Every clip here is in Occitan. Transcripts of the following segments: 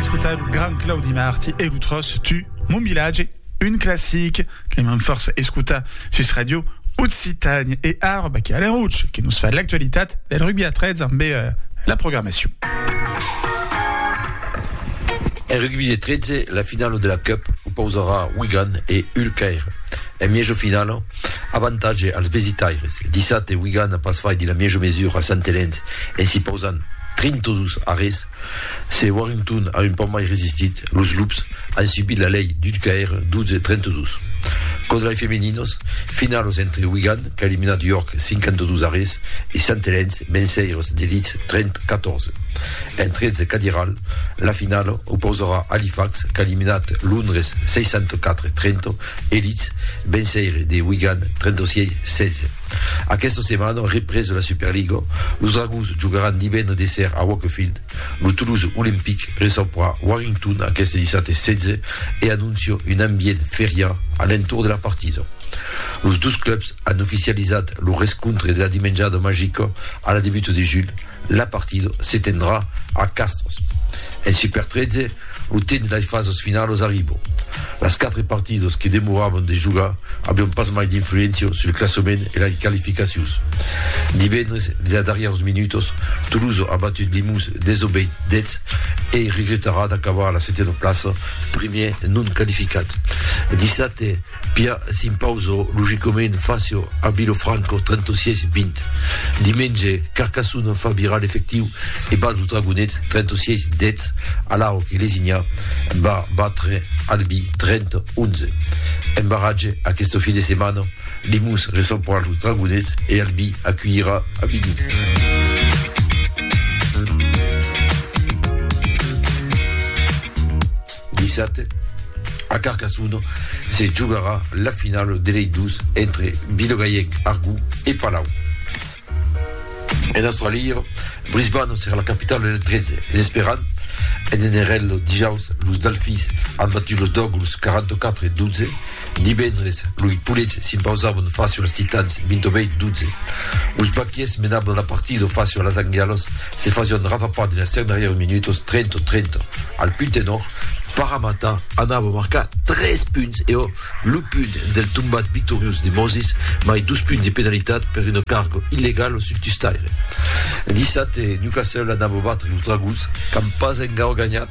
escotar lo gran Claudi Marti e lo tròç Tu, mon vilatge, un classic que m'an fòrça escotar sus Radio Occitània. E ara, Baquer Aleròtge, que nos fa l'actualitat del rugbi a 13 amb eh, la programacion. En rugbi de 13, la finala de la Cup opausarà Wigan e Hull Caire. En miejo finala, avantatge als visitaires. Dissabte, Wigan a pas faiti la miejo mesura a Sant Helens en s'i pausant 32 arrés Se Warrington a un pauc mai resistit, los Loops an subit la lei d'ull caire 12-32. Còns lai femeninos, finalos entre Wigan qu'a eliminat York 52 a res e Sant Helens Menseiros de Leeds 30-14. En 13 cadiral, la finala opausarà Halifax qu'a eliminat Londres 64-30 e Leeds Menseire de Wigan 36-16. Aquesta setmana, représ de la Superliga, los Dragons jogaràn divendres de ser a Wakefield. Lo Toulouse Olympic recebrà Warrington aqueste dissabte 16 e anóncia un ambient feriá a l'entorn de la partida. Los dos clubs an oficializat lo rescontre de la Dimenjada Magica a la debuta de julh, La partida se tendrà a Castres. En Super 13, lo temps de las fasas finalas arriba. Las quatre partidas que demoravan de jogar avián pas mai d'influéncia sul classament e las qualificacions. Divendres, de las darrièras minutas, Tolosa a batut Limous desobeit deth e regretarà d'acabar a la setiena plaça, primièr non qualificat. Dissabte, Pia s'impauso logicament facio a Vilofranco 36 20 dimenge, Carcassonne en fa virar l'efectiu e bat los Dragonets 36 10 alhau que Lesignà va batre Albi 30 11. En barratge aqueste fin de setmana, Limons recebra los Dragonets e Albi aculhirà Avignon. Dissabte, a Carcassonne, se jogarà la finala de lei dos entre Vilogaièc, Argó, e Palau. En Austràlia, Brisbane serà la capitala del 13 en esperant en NRL dijaus los Delfins an batut los Dogs 44-12 Divendres, loi Pulets s'impausavon fàcio als Titans, 28, 12. Los Baquiers menavon la partida fàcio a las Anglialas, se fasion rafapar dins las dernièrs minutos, 30, 30. Al punt tenor, Paramata anava marcar tres punts e ò lo punt del tombat victoriós de Moses, mai dos punts de penalitat per una carga illegala sul tustaire. Dissabte, Newcastle anava batre los Dragons qu'an pas engaur ganhat.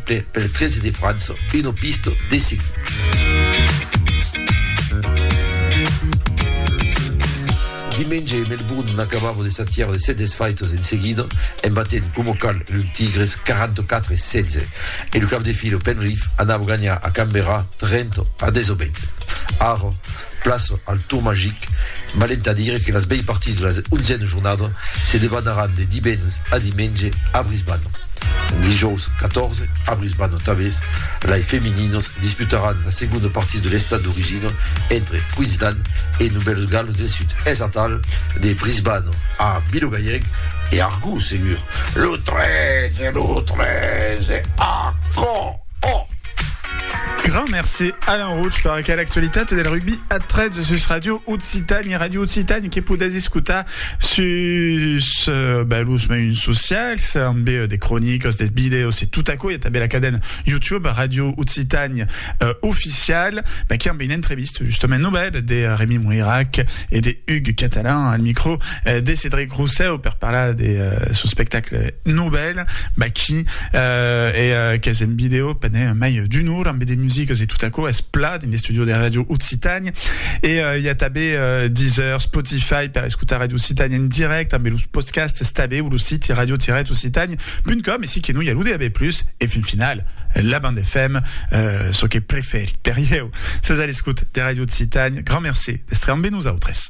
Pel 13 de França, una pista de seguir. Dimenge, Melbourne n'acabava de s'atiar de 7 desfaitas en seguida, en batent coma cal los Tigres 44 a 16, e lo cap de fila Penrith anava ganhar a Canberra 30 a 18. Ara, Plaça al Tour Magic, valent a dire que las bèi partits de la onzièna jornada se debanaràn de divendres a dimenge a Brisbane. Dijòus 14, a Brisbane tanbés, lai femininas disputaràn la segonda partida de l'estat d'origina entre Queensland e Novèls Gals del Sud. Es atal de Brisbane a Vilogaièg e Argó segur. Lo 13, lo 13, a Caen! Òh! Grand merci Alain Rouch per aquela actualitat del rugbi a 13 sus Radio Occitània, Radio Occitània que podètz escotar sus uh, ben, los meiuns socials, amb uh, de cronicas, de videos e tot aquò. Hi ha també la cadena YouTube Radio Occitània uh, oficial, ben, qui amb une entrevista justement nouvelle de Rémi Moirac et de Hugues Catalan al micro uh, de Cédric Rousseau per parlar de uh, son spectacle nouvelle. Israel, Maki, eh, e qu'es en video pendent mai d'un or ambe de musiques e tot aquò es plat en l'estudio de Radio Occitània. E eh, i a tabé eh, Deezer, Spotify per escutar Radio Occitània en direct ambe los podcasts tabé o lo site radio-occitània.com e si que no i a lo DAB+, e fin final, la bande FM, eh, çò que preferi per ieu. Sas a l'escut de Radio Occitània, grand merci d'estre ambe nosaltres.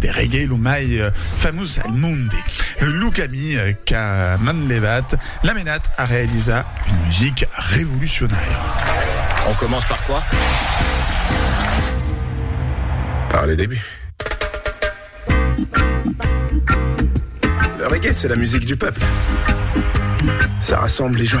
De reggae lo mai famós al monde, lo camí qu'a manlevat l'a menat a realizar una musica revolucionària. On commence par quoi? Par le début. Le reggae, c'est la musique du peuple. Ça rassemble les gens.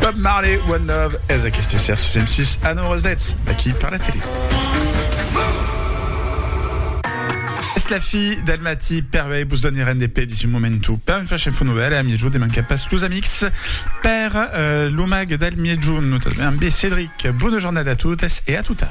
Bob Marley, One Love, ez aquesta ser sus M6 a 9 h 10, d'aquí per la tele. Es la fi del matí, per bé vos donirem de pè dins un momentu per un flash info novel e a miègjorn de mancar pas los amics per eh, lo mag del miègjorn, notamment amb Cédric. Bona jornada a totes e a tota!